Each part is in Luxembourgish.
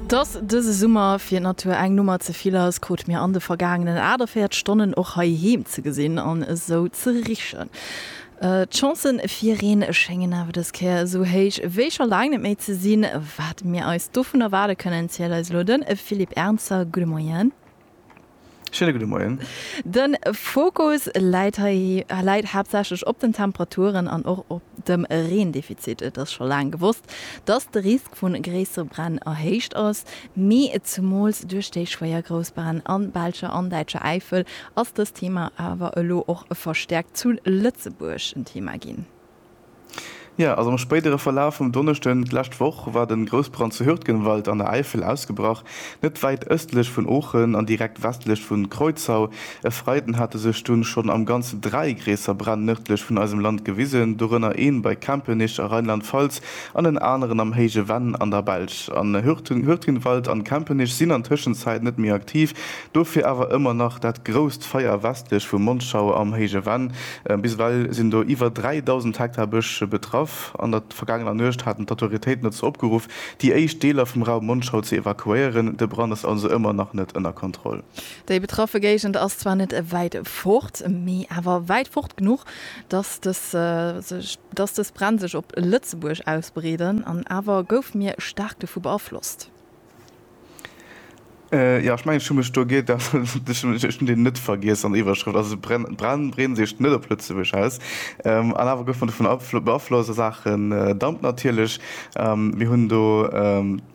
Dass dëse Summer fir d'Natur eng Nummer ze vill ass, krute mir an de vergaangenen 48 Stonnen och heiheem ze gesinn an esou ze richen. D'Chancë fir Reen schéngen awer dës Kéier esou héich wéi scho laang net méi ze sinn. Wat mir eis dovun erwaarde kënnen, zielt eis elo de Philippe Ernzer. Gudde Moien. Schéine gudde Moien. De Fokus läit hei läit haaptsächlech op den Temperaturen an och op dem Reendefizit. Et ass scho laang gewosst, dass de Risk vu gréissere Bränn erhéicht ass, mee zumools duerch déi schwéier Groussbränn an belscher an däitscher Äifel ass dëst Thema awer elo och verstäerkt zu Lëtzebuerg en Thema ginn. Jo, also am spéidere Verlaf vum Donneschden d'lescht Woch war de Groussbrand zu Hürtgenwald an der Äifel ausgebrach, net wäit ëstlech vun Oochen an direkt westlech vun Kreuzau. E Freiden hate sech dunn schonn am Ganze dräi gréisser Bränn nërdlech vun eisem Land gewisen, dorënner een bei Kempenich a Rheinland-Pfalz an en aneren am Héije Venn an der Belsch. Hürtgenwald an Kempenich sinn an Tëschenzäit net méi aktiv. Dofir awer ëmmer nach dat grousst Feier westlech vu Monschau am Héije Venn. Bis ewell sinn do iwwer 3.000 Hektar Bësch betraff. An der vergaangener Nuecht haten d'Autoritéiten dozou opgeruff, déi éischt Deeler vum Raum Monschau ze evakuéieren. De Brand ass also ëmmer nach net ënner Kontroll. Déi betraffe Géigend ass zwar net wäit fort, mee awer wäit fort genuch, datt dës Bränn sech op Lëtzebuerg ausbreeden. An awer goufe mir staark dovu beaflosst. Jo, ech mengen, ech hu mech do geirrt. Ech hunn deen net vergiess an der Iwwerschrëft. Also se brennen, breen seecht net op Lëtzebuerg aus. An awer gouf mer dovun beaflosst a Saachen Damp natierlech. Mir hunn do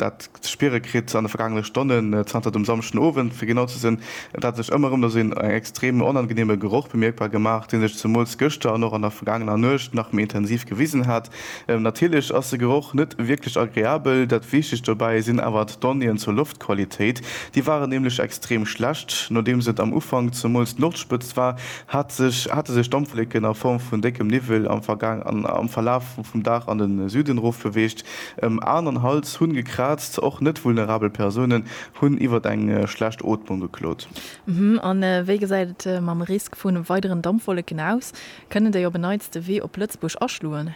dat ze spiere kritt an de vergaangene Stonnen, zanter dem Samschdenowend fir genau ze sinn. Et hat sech ëmmer erëm esou een extrem onangeneeme Geroch bemierkbar gemaach, dee sech zemools gëschter an och an der vergaangener Nuecht nach méi intensiv gewisen hat. Natierlech ass de Geroch net wierklech agreabel, dat wichtegt dobäi sinn awer d'Donnéeën zur Loftqualitéit. Déi waren nämlech extrem schlecht. Nodeems et am Ufank zemools d'Loftspëtzt war, hat sech hate sech Dampfwlécken a Form vun déckem Niwwel am Vergaang an am Verlaf vum Dag an de Süden erof beweegt. Ëm An an Hals hunn gekraazt. Och net vulnerabel Persounen hunn iwwert eng schlecht Ootmung geklot. An wéi gesäit et mam Risk vu weideren Dampfwolleken aus? Kënnen déi op en Neits de Wee op Lëtzebuerg aschloen?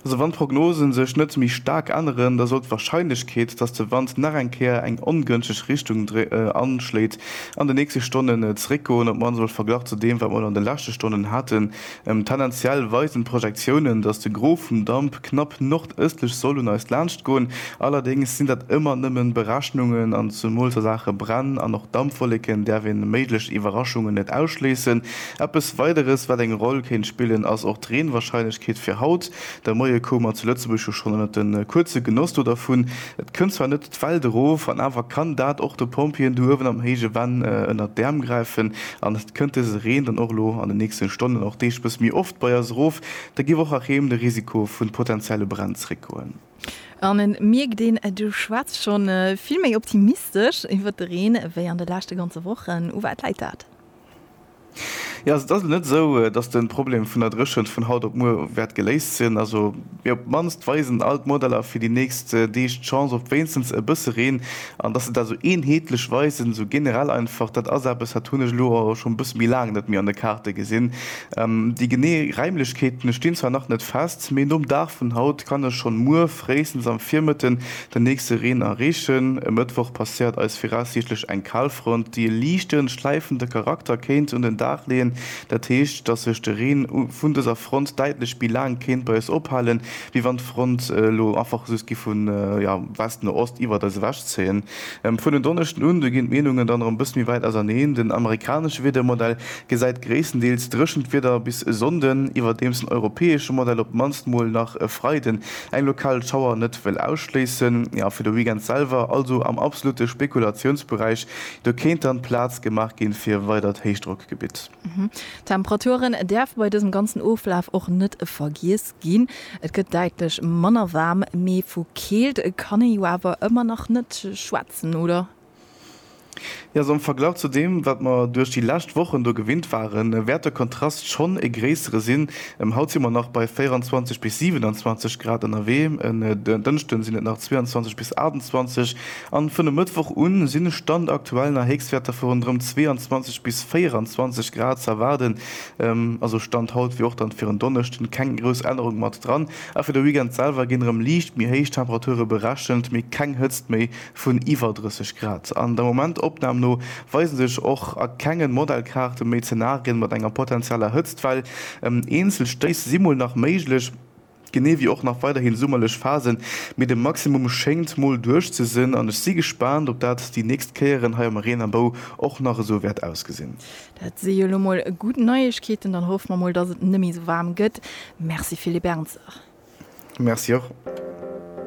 Also wann d'Prognosen sech net méi staark änneren, da sollt d'Warscheinlechkeet, datt de Wand nach eng Kéier eng ongënschteg Richtung anschléit, an de nächste Stonnen zeréckgoen, op mannst emol verglach zu deem, wat mer elo an de leschte Stonnen haten. Tendenziell weisen d'Projektiounen, datt de Gros vum Damp knapp nordëstlech soll un eis laanschtgoen. Allerdéngs sinn dat ëmmer nëmmen Berechnungen, an zemools a Saache Bränn an och Dampwolleken däerf een méiglech Iwwerraschungen net ausschléissen. Eppes Weideres, wat eng Roll kéint spillen, ass och d'Reenwahrscheinlechkeet fir haut. De Moie koum mer zu Lëtzebuerg jo schonn ënnert de kuerze Genoss do dervun. Et kënnt zwar net d'Welt erof, an awer kann dat och de Pompjeeën do uewen am héije Venn ënnert d'Äerm gräifen. An et kënnt dëse Reen dann och elo an de nächste Stonnen, och Deeg bësse méi oft bei eis erof. Da géif och erém de Risiko vu potentielle Bränn zréckgoen. An et mierkt een, du schwätz schonn vill méi optimistesch iwwert de Reen, wéi an de leschte ganze Wochen. U wat läit dat? Jo, also et ass elo net esou, datt de Problem vun der Dréchent vun haut op muer wäert geléist sinn. Also, mee op d'mannst weisen all d'Modeller fir déi nächst Deeg d'Chance op wéinstens e bësse Reen. An datt se dat esou eenheetlech weisen, esou generell einfach, dat ass eppes, dat hunn ech elo awer scho e bësse méi laang net méi an de Kaarte gesinn. Déi genee Räimlechkeeten stinn zwar nach net fest, mee nom Dag vun haut kann ech schonn muer fréistens am Virmëtten Den nächste Reen a Reegen e Mëttwoch passéiert eis viraussiichtlech eng Kalfront, déi e liichte schläifende Charakter kéint un den Dag leeën. Dat heescht, dass sech de Reen vun dëser Front däitlech méi laang kéint bei eis ophalen, wéi wann d'Front elo einfach just giff vu West no Ost iwwert eis ewech zéien. Vun en Donneschden un, do ginn d'Meenungen dann erëm e bësse méi wäit auserneen. Den amerikanesche Wiedermodell gesäit gréisstendeels dréchent Wieder bis e Sonnden, iwwerdeems den europäesche Modell op d'mannst mol nach e Freiden Eng lokal Schauer net wëll ausschléissen. Jo, fir de Weekend selwer, also am absolute Spekulatiounsberäich, do kéint dann Plaz gemaach ginn fir e weidert Héichdrockgebitt. Temperaturen däerfe bei dësem ganzen Oflaf och net vergiess ginn. Et gëtt däitlech manner waarm, mee vu Keelt kann ee jo awer ëmmer nach net schwätzen, oder? Jo, esou am Verglach zu deem, wat mer duerch déi lescht Wochen do gewinnt waren, wäert de Kontrast schonn e gréissere sinn. Haut si mer nach bei 24 bis 27 Grad ënnerwee, en Dënschden sinn et nach 22 bis 28 a vun e Mëttwoch un sinn, Stand aktuell, nach Héchstwäerter vu ronderëm 22 bis 24 Grad ze erwaarden. Also Stand haut, wéi och dann fir en Donneschden, keng grouss Ännerung mat dran. A fir de Weekend selwer ginn erëm liicht méi héich Temperature berechent, mee keng Hëtzt méi. vun iwwer 30 Grad an der Momentopnahm no weise sech och a kengen Modellkaarte méi Zenarien mat enger potenzieller Hëtztwell. Eenzel Stéiss si mol nach méiglech, genee wéi och nach weiderhin summerlech Phasen, mee de Maximum schéngt mol duerch ze sinn an ech si gespaant op dat déi nächst Kéieren hei am Reen a Bou och nach esou wäert ausgesinn. Dat si jo elo mol gutt Neiegkeeten, dann hoffe mer mol dass et net méi esou waarm gëtt. Merci Philippe Ernzer. Merci och.